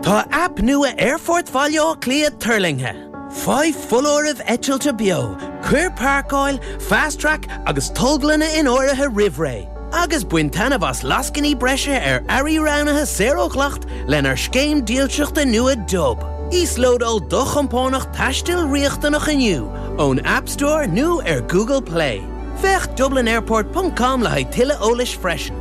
Tá aip nua Aerfort Bhaile Átha Cliath tuirlingthe. Faigh foláirimh eitilte beo, cuir páirceáil, Fast Track agus tolglanna in áirithe roimh ré, agus bain taitneamh as lascainí breise ar earraí roghnaithe saor ó dhleacht lenár scéim dílseachta nua Dub. Íoslódáil do chompánach taistil riachtanach inniu ón App Store nó ar Google Play. Féach dublinairport.com le haghaidh tuilleadh eolais freisin.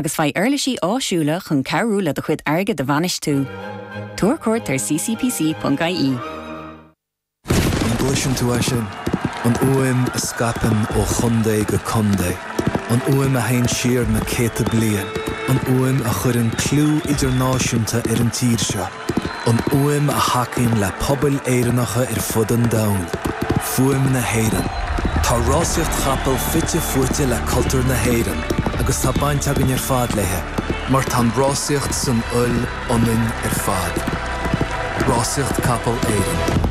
agus faigh uirlisí áisiúla chun cabhrú le do chuid airgid a bhainistiú. Tabhair cuairt ar ccpc.ie. An gcloiseann tú é sin? An fhuaim a scaipeann ó chontae go contae, an fhuaim a théann siar na céadta bliain, an fhuaim a chuireann clú idirnáisiúnta ar an tír seo. an fhuaim a thacaíonn le pobail Éireannacha ar fud an domhain, fuaim na hÉireann. Tá rásaíocht chapall fite fuaite le cultúr na hÉireann agus tá baint againn ar fad léi mar tá an rásaíocht san fhuil ionainn ar fad. Rásaíocht Capall Éireann.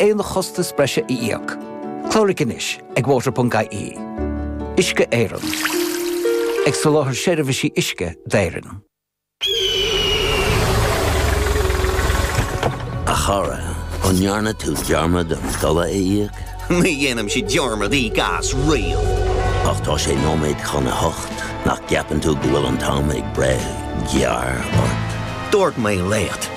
aon chostas breise a íoc. Cláraigh anois ag water.ie. Uisce Éireann. Ag soláthar seirbhísí uisce d'Éirinn. A chara, an ndearna tú dearmad an dola a íoc? Ní dhéanaimse dearmad íoc as riamh! Ach tá sé nóiméad chun a hocht, nach gceapann tú go bhfuil an t-am ag breith gearr ort? Dúirt mé leat!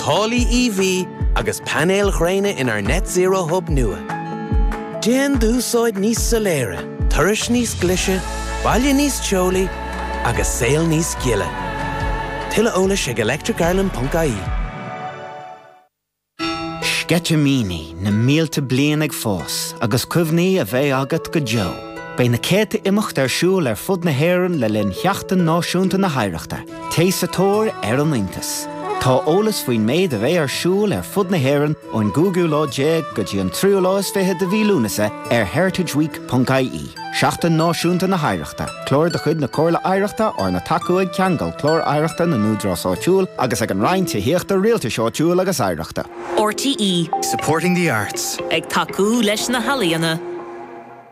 Táillí EV agus painéil ghréine inár Net Zero Hub nua. Déan d'úsáid níos soiléire, turais níos glise, baile níos teolaí agus saol níos gile. Tuilleadh eolais ag electricireland.ie. Sceitimíní na mílte bliain ag fás agus cuimhní a bheidh agat go deo. Beidh na céadta imeacht ar siúl ar fud na hÉireann le linn Sheachtain Náisiúnta na hOidhreachta. Téigh sa tóir ar an iontas. Tá eolas faoin méid a bheidh ar siúl ar fud na hÉireann ón gcúigiú lá déag go dtí an tríú lá is fiche de mhí Lúnasa ar heritageweek.ie. Seachtain Náisiúnta na hOidhreachta, Clár de chuid na Comhairle Oidhreachta arna tacú ag Ceangal Clár Oidhreachta na nÚdarás Áitiúil agus ag an Roinn Tithíochta, Rialtais Áitiúil agus Oidhreachta. RTÉ. Supporting the arts. Ag tacú leis na healaíona.